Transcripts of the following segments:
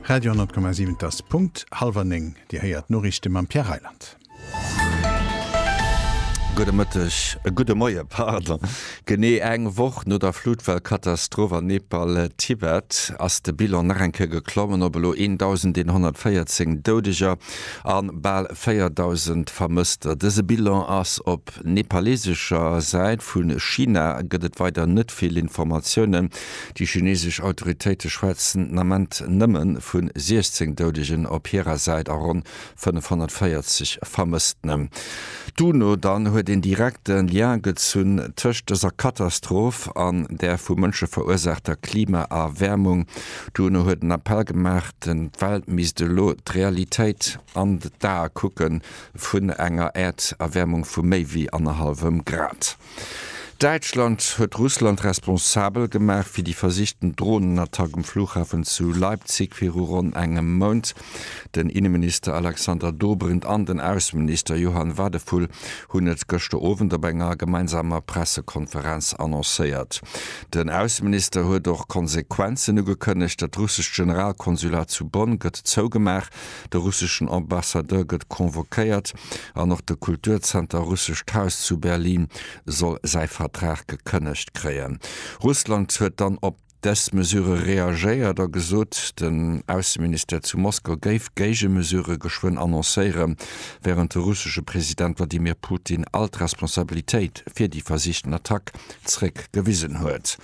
Radio 10,7 Et ass Punkt hallwer néng. Dir héiert d'Noriichte mam Pierre Reyland. Gudde Mëtteg, gudde Moie pardon. Genee eng Woch no der Flutwell-Katastroph an Nepal, Tibet, ass de Bilan nach eng Kéier geklommen op elo 1.114 Doudeger a bal 4.000 Vermësster. Dëse Bilan ass op nepalesescher Säit. Vu China gëtt et weider net vill Informatiounen. Déi chinesesch Autoritéite schwätzen den Ament nëmme vu 16 Doudegen op hirer Säit a ronn 540 Vermësstene. D'UNO dann huet een direkte Lien gezunn tëscht dëser Katastroph an der vu Mënsche verursaachter Klimaerwäermung. D'UNO huet en Appell gemaach, d'Welt misst elo d'Realitéit an d'Ae kucke vun enger Äerderwäermung vu méi wéi annerhallwem Grad. Däitschland huet Russland responsabel gemaach fir déi versichten Dronenattack um Flughafen zu Leipzig viru ronn engem Mount. Den Inneminister Alexander Dobrindt an den Ausseminister Johann Wadephul hunn et gëschter Owend op enger gemeinsamer Pressekonferenz annoncéiert. Den Ausseminister huet och Konsequenzen ugekënnegt, Dat russescht Generalkonsulat zu Bonn gëtt zougemaach, de russeschen Ambassadeur gëtt convoquéiert, an och de Kulturzenter Russescht Haus zu Berlin soll säi Vertrag gekënnegt kréien. Russland huet dann op dës Mesure reagéiert a gesot, den Ausseministère zu Moskau géif Géigemesure geschwënn annoncéieren, wärend de russesche President Wladimir Putin all d'Responsabilitéit fir déi versichten Attack zréck gewisen huet.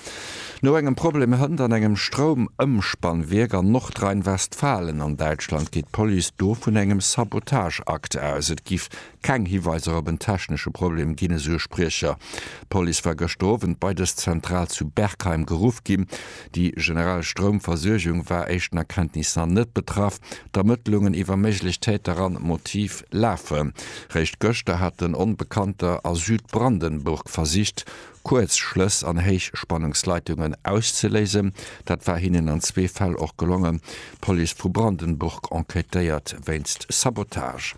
No engem Problem hënt an engem Stroumëmspannwierk an Nordrhein-Westfalen an Däitschland geet d'Police do vun engem Sabotageakt aus. Et giff keng Hiweiser op en technesche Problem ginn, esou e Spriecher. D'Police war gëschter Owend bei dës Zentral zu Bergheim geruff ginn. Déi generell Stroumversuergung war éischten Erkenntnis na net betraff. D'Ermëttlungen iwwer méiglech Täter an Motiv lafen. Réischt gëschter haten Onbekannter a Südbrandenburg versicht, Kuerzschlëss an Héichspannungsleitungen auszeléisen. Dat war hinnen an zwee Fäll och gelongen. D'Police vu Brandenburg enquêtéiert wéinst Sabotage.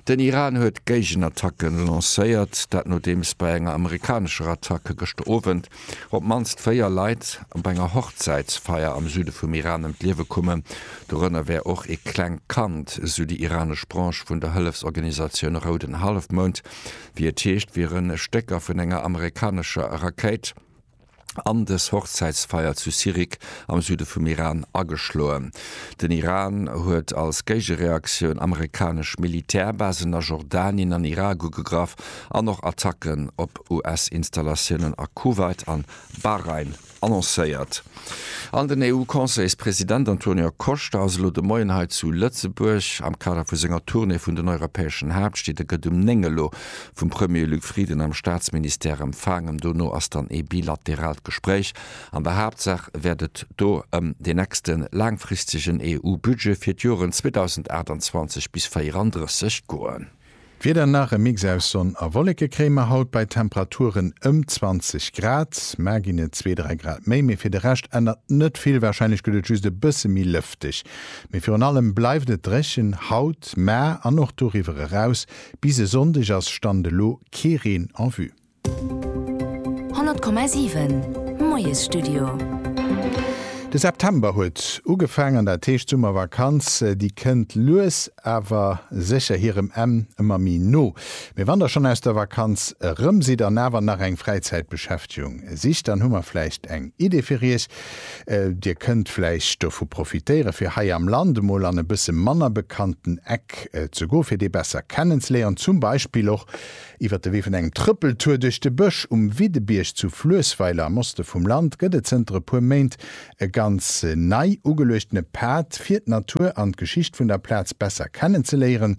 Den Iran huet Géigenattacken lancéiert, dat nodeems bei enger amerikanescher Attacke gëschter Owend op d'mannst véier Leit op enger Hochzäitsfeier am Süde vum Iran ëm d'Liewe kommen. Dorënner wär och ee klengt Kand, sou déi iranesch Branche vun der Hëllefsorganisatioun Rouden Hallefmound. Wéi et heescht, wiere Stécker vun enger amerikanescher Rakéit. an des Hochzäitsfeier zu Sirik am Süde vum Iran ageschloen. Den Iran huet als Géigereaktioun amerikanesch Militärbasen a Jordanien an Irak ugegraff an och Attacken op US-Installatiounen a Kuwait an Bahrain annoncéiert. An den EU-Conseilspresident Antonio Costa ass elo de Moien hei zu Lëtzebuerg am Kader vu senger Tournée vun den europäeschen Haaptstied. E gëtt um 9 elo vum Premier Luc Frieden am Staatsministère empfaangen. Dono ass dann ee bilateraalt Gespréich. An der Haaptsaach wäert et do ëm deen nächste laangfristegen EU-Budget fir d'Joren 2028 bis 34 goen. D'Wieder, Nach e Mix aus Sonn a Wolleke kréie mer haut bei Temperaturen ëm 20 Grad. Mar ginn et zwee, dräi Grad méi, mee fir de Rescht ännert net vill. Warscheinlech gëtt et just e bësse méi lëfteg, mee virun allem bleift et dréchen haut, mar an och doriwwer eraus. Bis e Sonndeg ass Stand elo kee Reen en vue. 100,7 Moiesstudio. De September huet ugefaang an dat heescht d'Summervakanz déi kënnt lues awer sécher hirem Enn ëmmer méi no. Mee wann der schonn aus der Vakanz erëm sidd an awer nach eng Fräizäitbeschäftegung sicht, dann hu mer vläicht eng Idee fir iech, Dir kënnt vläicht dovu profitéieren, fir hei am Land emol an e bësse manner bekannten Eck ze goen, fir dee besser kennenzeléieren, zum Beispill och iwwer de Wee vun engem Trëppeltour duerch de Bësch. Um Widdebierg zu Fluessweiler am Oste vum Land gëtt et zënter e puer Méint e ganz nei ugeluechtene Pad, fir d'Natur an d'Geschicht vun der Plaz besser kennenzeléieren.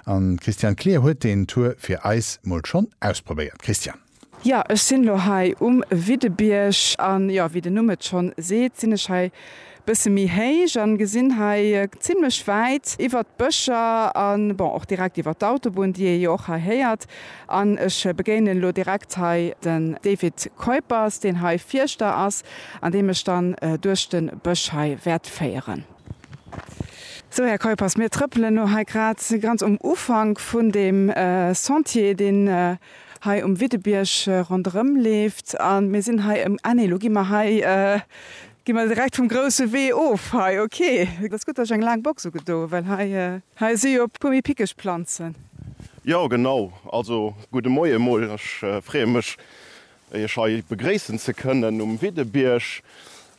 An d'Christiane Klier huet deen Tour fir eis mol schonn ausprobéiert. Christiane. Jo, ech sinn elo hei um Widdebierg an jo, wéi den Numm et schonn seet, sinn ech hei bësse méi héich an gesinn hei zimmlech wäit iwwert d'Bëscher an bon och direkt iwwert d'Autobunn, déi ee jo och hei héiert. An ech begéinen elo direkt hei den David Kuijpers, deen hei Fierschter ass an dee mech dann duerch de Bësch hei wäert féieren. Sou, Här Kuijpers, mir trëppelen elo hei grad ganz um Ufank vun deem Sentier, deen hei um Widdebierg ronderëm leeft. A mir sinn hei ëm, ah nee, elo gi mer hei, gi mer direkt vum grousse Wee of hei, ok. Et ass gutt, datt ech eng laang Box ugedoen, well hei, hei si jo e puer méi pickeg Planzen. Jo, genau. Also, gudde Moie emol. Ech freeë mech, Iech hei begréissen ze kënnen um Widdebierg.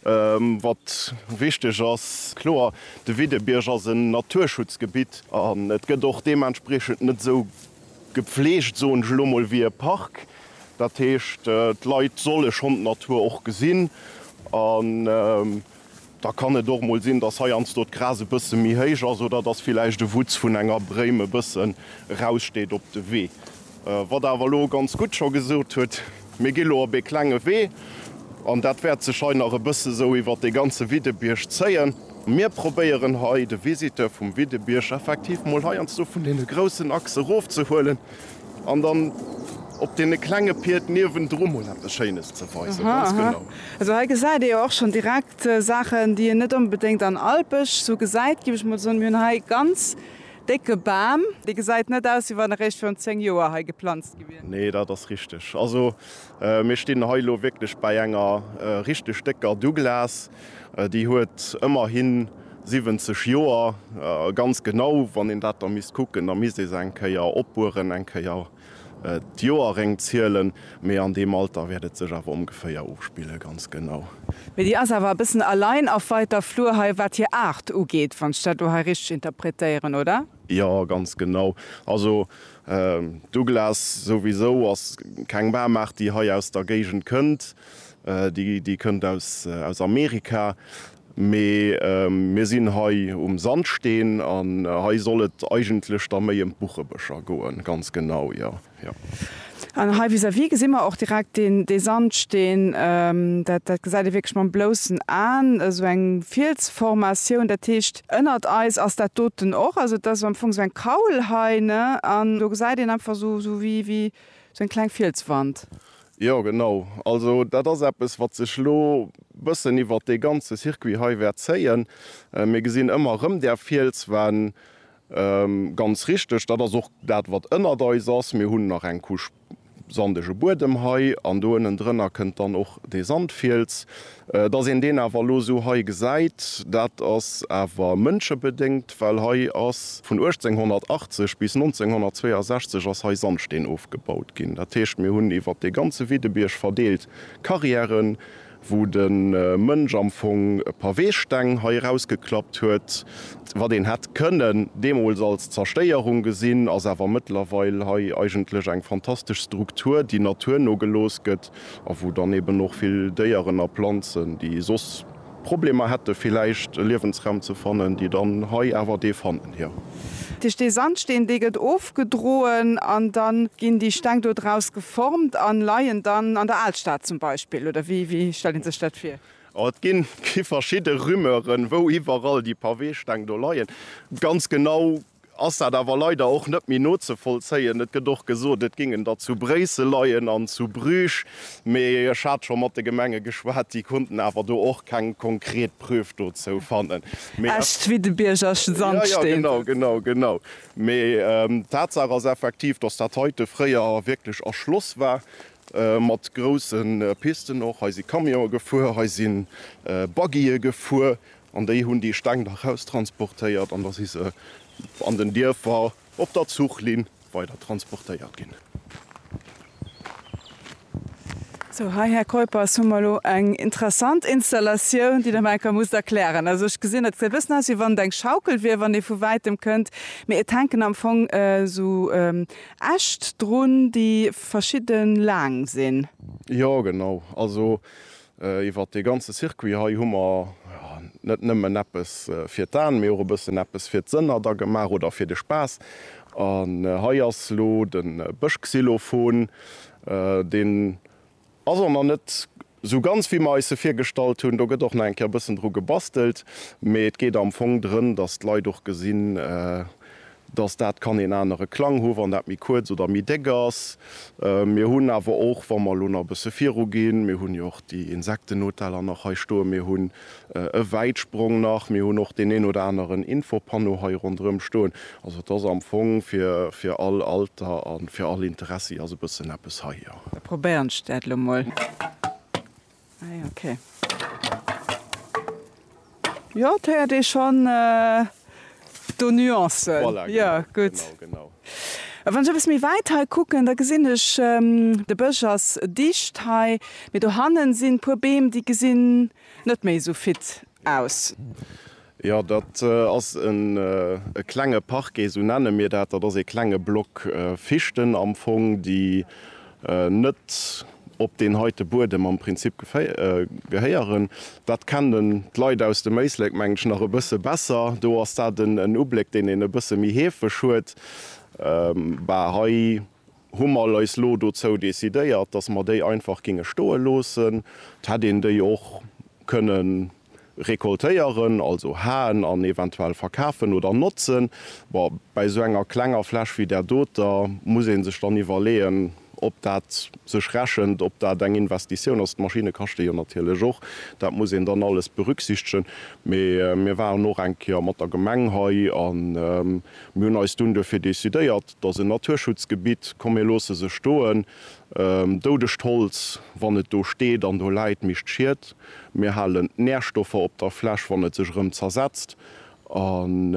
Wat wichteg ass, kloer, de Widdebierg ass en Naturschutzgebitt an et gëtt och deementspriechend net esou Gepflegt, soen ech elo mol, wéi e Park. Dat heescht, d'Leit solle schonn d'Natur och gesinn. An da kann et och mol sinn, dass heiansdo d'Gras e bësse méi héich ass oder dass villäicht e Wutz vun enger Bréim e bëssen eraussteet op de Wee. Wat Der awer elo ganz gutt scho gesot hutt, Mir gi lo op ee klenge Wee an dat wäert sech hei nach e bësse esou iwwert dee ganze Widdebierg zéien. Mir probéieren hei de Visiteur vum Widdebierg effektiv mol heiansdo vun deene groussen Achse erofzehuelen an dann op deene klenge Pied niewendru mol eppes Schéines ze weisen. Ganz genau. Also hei gesäit ee jo och schonn direkt Saachen, déi een net onbedéngt an Alpesch esou gesäit, géif ech mol soen. Mir hunn hei ganz Décke Bam. Dee gesäit net aus, wéi wann e réischt virun 10 Joer hei geplanzt gi wier. Nee, dat ass richteg. Also mir stinn hei elo wierklech bäi enger richteg décker Douglas. Déi huet ëmmerhi 70 Joer. Ganz genau, wann een dat da misst kucken, da misst ee se eng Kéier opbueren, eng Kéier D'Joer réngt zielen, mee an deem Alter wäert et sech awer omgeféier ofspillen, ganz genau. Mee déi ass awer e bëssen allein auf weiter Flur hei, wat hir Aart ugeet, wann ech dat do hei richteg interpretéieren, oder? Jo, ganz genau. Also Douglas, souwisou ass keng Baumaart, déi hei aus der Géigend kënnt. Déi kënnt aus Amerika. Mee mir sinn hei um Sandsteen an hei soll et eigentlech da méi ëm d'Buchebëscher goen. Ganz genau, jo, jo. An hei vis-à-vis gesi mer och direkt deen, dee Sandsteen. Dat, dat gesäit ee wierklech mam bloussen Aen, esou eng Fielsformatioun. Dat heescht, ënnert eis ass dat doten och. Also, et ass am Fong esou eng Kaul hei, ne? An do gesäit een einfach esou, esou wéi, wéi esou eng kleng Fielswand. Jo, genau. Also dat ass eppes, wat sech elo e bëssen iwwert dee ganze Circuit hei wäert zéien. Mir gesinn ëmmer erëm där Fielswänn. Ganz richteg, dat ass och dat, wat ënnert eis ass. Mir hunn nach eng Couche sandege Buedem hei an do ënnendrënner kënnt dann och dee Sandfiels. Dass een deen awer elo esou hei gesäit, dat ass awer mënschebedéngt, well hei ass vun 1880 bis 1962 ass hei Sandsteen ofgebaut ginn. Dat heescht, mir hunn iwwer dee ganze Widdebierg verdeelt Carrièren, wou de Mënsch am Fong Paweesteng hei erausgeklappt huet. Wat een hätt kënnen deemools als Zerstéierung gesinn, ass awer mëttlerweil hei eigentlech eng fantastesch Struktur, déi naturno gelooss gëtt, a wou dann eben och vill Déieren a Planzen, déi soss Problemer hätte villäicht e Liewensraum ze fannen, déi dann hei awer dee fannen, jo. Dat heescht, dee Sandsteen, dee gëtt ofgedroen an da ginn déi Steng do draus geformt a leien dann an der Alstad zum Beispill, oder wéi stellt ee sech dat vir? Et gi verschidde Rumeuren, wou iwwerall déi Paweesteng do leien. Ganz genau ass dat awer leider och net méi nozevollzéien. Et gëtt och gesot, et géing en da zu Bréissel leien an zu Bruges, mee ech hat scho mat de Gemenge geschwat, déi konnten awer do och keng konkret Preuve dozou fannen. Mee et. Echt wéi de Biergerschen Sand Ja, ja, stinn. genau, genau, genau. Mee d'Tatsaach ass effektiv, dass dat heite fréier wierklech erschloss war, mat grousse Pisten och. Hei si Camionë gefuer, hei si Buggye gefuer. An déi hunn déi Steng da raustransportéiert an da si se an den Dierfer op der Zuchlinn weider transportéiert ginn. Sou, hei, Här Keuppers, hu mer elo eng interessant Installatioun, déi Der mer eng Kéier musst erklären. Also, ech gesinn, dat gesäit e bëssen aus, wéi wann et eng Schaukel wier, wann ee vu Wäitem kënnt. Mee et hänken am Fong esou Äscht drun, déi verschidde laang sinn. Jo, genau. Also, Iwwert dee ganze Circuit hei hu mer net nëmmen eppes fir d'An, mee och e bëssen eppes fir d'Sënner da gemaach, oder fir de Spaass. An hei ass elo de Bëschxylophon. Deen ass och nach net esou ganz, wéi mer eis e virgestallt hunn. Do gëtt och nach eng Kéier e bëssen dru gebastelt, mee et geet am Fong drëm, dass d'Leit och gesinn, dass dat kann een anere Klang hu wann dat méi kuerz oder méi déck ass. Mir hunn awer och, wa mer elo nach e bësse viruginn, mir hunn jo och déi Insektenhoteller nach hei stoen, mir hunn e Wäitsprong nach, mir hunn och deen een oder aneren Infopanneau hei ronderëm stoen. Also et ass am Fong fir fir all Alter a fir all Interessi ass e bëssen eppes hei, jo. Da probéieren ech dat elo mol. Ei ok. Jo et héiert ee schonn do Nuancen. Voilà genau. Jo gutt. Genau, genau. A wann ech eppes méi wäit hei kucken, da gesinn ech de Bësch ass dicht hei, mee dohannen sinn puer Beem déi gesinn net méi esou fit aus. Jo, dat ass e klenge Parquet, esou nenne mir dat. Dat ass ee klenge Block Fichten am Fong, déi net op deen heite Buedem am Prinzip gehéieren. Dat kennen d'Leit aus dem Éislek, mengen ech, nach e bësse besser. Do ass dat en Ubléck, deen een e bësse méi heefeg huet. Bah, hei. hu mer eis lo dozou decidéiert, dass mer déi einfach géinge stoe loossen. Et hätt een déi och kënne recoltéieren, also haen an eventuell verkafen oder notzen. Bon, bäi esou enger klenger Fläch wéi där doter muss ee sech dann iwwerleeën, ob dat sech rechent, ob dat eng Investitioun ass. D'Maschinne kaschte jo natierlech och, dat muss een dann alles berücksichtegen. Mee mir waren och eng Kéier mat der Gemeng hei a mir hunn eis dunn duerfir decidéiert, Et ass en Naturschutzgebitt, komm mir loosse se stoen. Doudegt Holz, wann et do steet an do läit, mécht Schied. Mir halen d'Närstoffer op der Fläch, wann et sech erëm zersetzt. An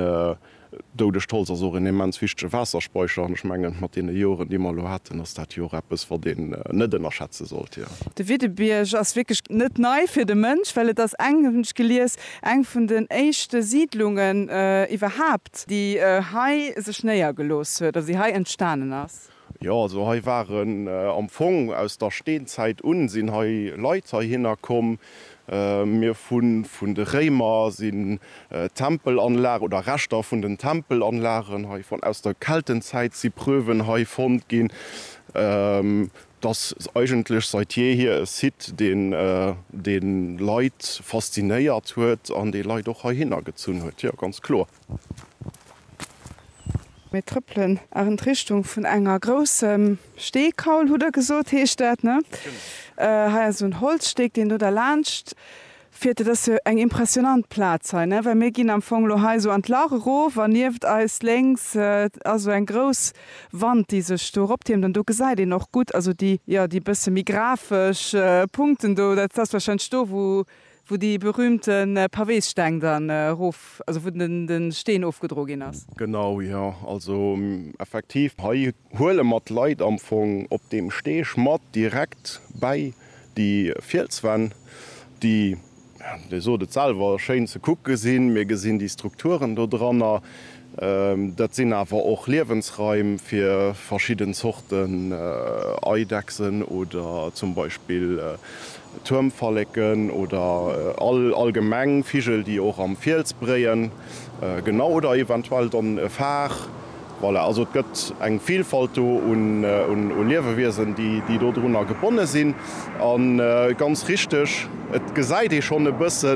doudegt Holz ass och en immens wichtege Waasserspeicher. An ech mengen, mat deene Joren, déi mer elo haten, ass dat jo och eppes, wat een net ënnerschätze sollt. De Widdebierg ass wierklech net nei fir de Mënsch, well et ass eng, hunn ech gelies, eng vun den éischte Siidlungen iwwerhaapt. Konzept. Déi hei sech néiergelooss huet, also déi hei entstanen ass. Jo, also hei waren am Fong aus der Steenzäit un sinn hei Leit heihinner komm. Mir hu vun de Réimer sinn Tempelanlagen oder Reschter vun den Tempelanlagen hei fonnt. Aus der Keltenzäit si Preuven hei fonnt ginn. Dass eigentlech seit jeehier e Site deen de Leit faszinéiert huet an dee Leit och heihinner gezunn huet, jo ganz kloer. Mir trëppelen an d'Richtung vun enger groussem Steekaul, hutt der gesot heescht dat, ne? Hei ass esou en Holzsteg deen do derlaanscht Fiert, et ass jo eng impressionant Plaz hei, ne, well mir ginn am Fong elo hei esou an d'Lach erof an nieft eis lénks ass esou eng grouss Wand, déi sech do eroptiermt an do gesäit een och gutt, also déi, jo, déi bësse méi grafesch Punkten do, dat ass wahrscheinlech do, wou, wou déi berühmte Pavéssteng dann erof, also wou de Steen ofgedro ginn ass. Genau, jo, also effektiv, hei huele mer d'Leit am Fong op deem Steg mat direkt bäi Déi Fielswänn, déi, Dir sot et selwer, schéin ze kucke sinn. Mir gesinn déi Strukturen dodranner. Dat sinn awer och Liewensraim fir verschidden Zorten Eidechsen oder zum Beispill Tuermfalleken oder allgemeng Vigel, déi och am Fiels bréien. Genau, oder eventuell dann e Far. Voilà, also et gëtt eng Vilfalt do u Liewewiesen, déi dodrunner gebonne sinn. A ganz richteg, et gesäit ee schonn e bësse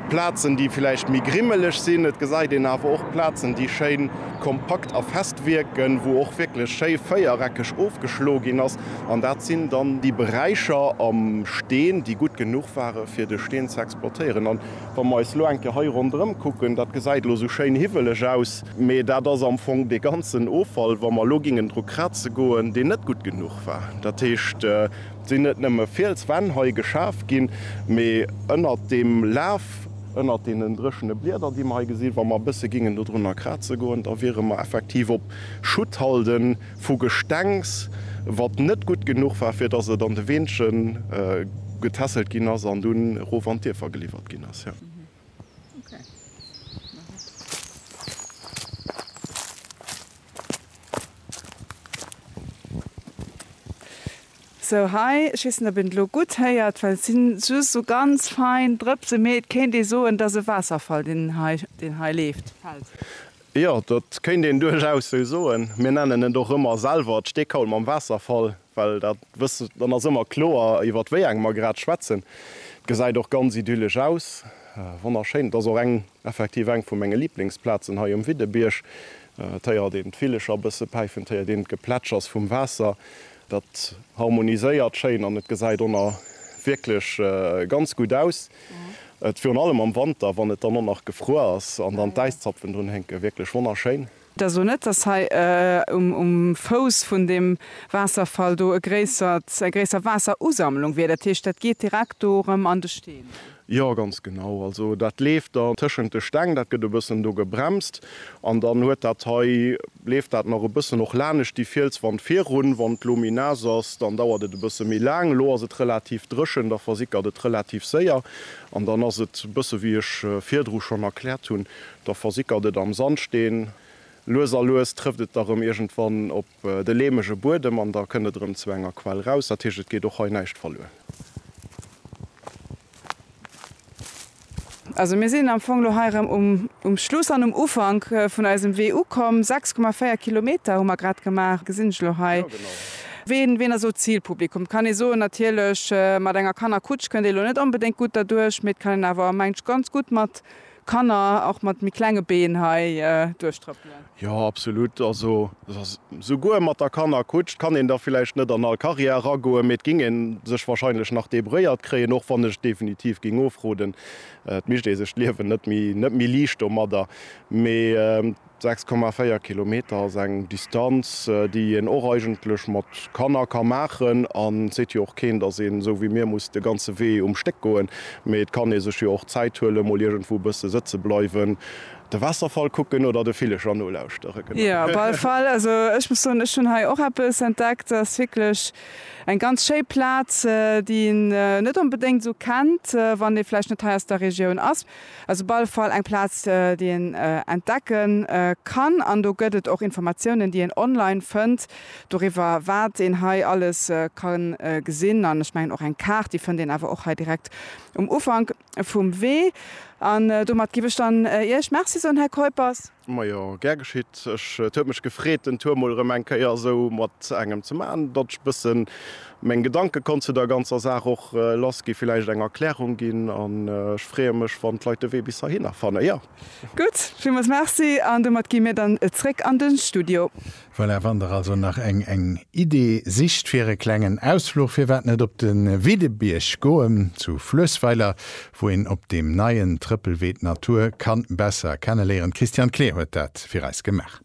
Plazen, déi vläicht méi grimmeleg sinn. Et gesäit een awer och Plazen, déi schéin kompakt a fest wierken, wou och wierklech schéi véiereckeg ofgeschloe ginn ass. An dat sinn dann déi Beräicher am Steen, déi gutt genuch ware fir de Steen ze exploitéieren. Wa mer eis elo eng Kéier hei ronderëm kucken, dat gesäit elo esou schéin hiwweleg aus, mee dat ass am Fong dee ganzen Offall, wa mer elo géingen dru kraze goen, deen net gutt genuch war. Dat heescht, et sinn net nëmme Fielswänn hei geschaf ginn, mee ënnert deem Laf, ënnert deenen dréchene Blieder, déi mer hei gesinn, wa mer e bësse géingen dodrunner kraze goen, da wiere mer effektiv op Schutthalden. Vu Gestengs, wat net gutt genuch war, fir datt et an de Weenzche getässelt ginn ass an dunn erof an d'Dierfer geliwwert ginn ass. Sou, hei, ech weess net, ob een et elo gutt héiert, well et si just esou ganz fein Drëpse, mee et kéint ee soen, et ass e Waasserfall, deen hei leeft, fält. Jo, dat kéint een duerchaus sou soen. Mir nennen et och ëmmer selwer d'Steekaul mam Waasserfall, well dat wësse, dann ass ëmmer kloer, iwwert wéi eng mer grad schwätzen. Et gesäit och ganz idyllesch aus, wonnerschéin. Et ass och eng, effektiv eng vu menge Liblingsplazen hei um Widdebierg. Et héiert een d'Villecher e bësse päifen, et héiert een d'Geplätschers vum Waasser. Dat harmoniséiert schéin an et gesäit o nach wierklech ganz gutt aus. Et virun allem am Wanter, wann et dann o nach gefruer ass an dann d'Äiszapfen drun hénken, wierklech wonnerschéin. Et ass o net, dass hei um Fouss vun deem Waasserfall do e gréissert, eng gréisser Waasserusammlung wier. Dat heescht, dat geet direkt do erëm an de Steen un? Jo, ganz genau. Also dat leeft dann tëschent de Steng, dat gëtt e bëssen do gebremst an dann huet dat hei Leeft dat nach e bëssen och lanescht déi Fielswand virun. Wann d'Lo méi naass ass, dann dauert et e bësse méi laang. Elo ass et relativ dréchen, da versickert et relativ séier. An dann ass et e bësse wéi ech virdru schonn erkläert hunn, da versickert et am Sandsteen. Lues a lues trëfft et da rëm iergendwann op de leemege Buedem an da kënnt et erëm zu enger Quell raus. Dat heescht, et geet och hei näischt verluer. Also mir sinn am Fong elo hei erëm um Schluss an um Ufank vun eisem Wee ukomm. 6,4 Kilometer hu mer grad gemaach, gesinn ech elo hei. Ween, ween ass elo d'Zilpublikum? Et kann ee soen, natierlech mat enger Kannerkutsch kënnt ee elo net onbedéngt gutt derduerch, mee et kann een awer, mengt ech, ganz gutt mat. Kanner och mat méi klenge Been hei duerchtrëppelen. Jo, absolut. Also souguer mat der Kannerkutsch. Et kann een da villäicht net an all Karriär eragoen, mee et géing ee sech wahrscheinlech nach debrouilléiert kréien, och wann ech definitiv géing ofroden. Et mécht ee sech d'Liewen net méi liicht domadder. Mee 6,4 Kilometer ass eng Distanz, déi een och eigentlech mat Kanner ka maachen. An et seet jo och keen, dass een esou wéi mir muss de ganze Wee um Stéck goen, mee et kann ee sech jo och Zäit huelen, mol iergendwou e bësse sëtze bleiwen, de Waasserfall kucken oder de Villecher nolauschtere. Jo, op alle Fall, also ech muss soen, ech hunn hei och eppes entdeckt. Ass wierklech eng ganz schéi Plaz, déi een net onbedéngt esou kennt, wann ee vläicht net hei aus der Regioun ass. Ass op alle Fall eng Plaz déi een entdecke kann an do gëtt et och Informatiounen déi een online fënnt doriwwer wat een hei alles ka gesinn an ech mengen och eng Kaart déi fënnt een awer och hei direkt um Ufank vum Wee. An domat giff ech dann Iech Merci soen Här Kuijpers. Majo, gär geschitt. Ech, et huet mech gefreet den Tour mol erëm eng Kéier esou mat engem ze maachen, datt ech e bëssen meng Gedanke konnt zu der ganzer Saach och lass ginn, villäicht eng Erklärung ginn an ech freeë mech wann d'Leit de Wee bis heihinner fannen, jo. Gutt, villmools Merci an domat gi mir dann zréck an de Studio. Voilà, wann der also nach eng eng Idee sicht fir e klengen Ausfluch, firwat net op de Widdebierg goen zu Fluessweiler, wou een op deem neien Trëppelwee d'Natur kann besser kenneléieren. D'Christiane Kleer huet dat fir eis gemaach.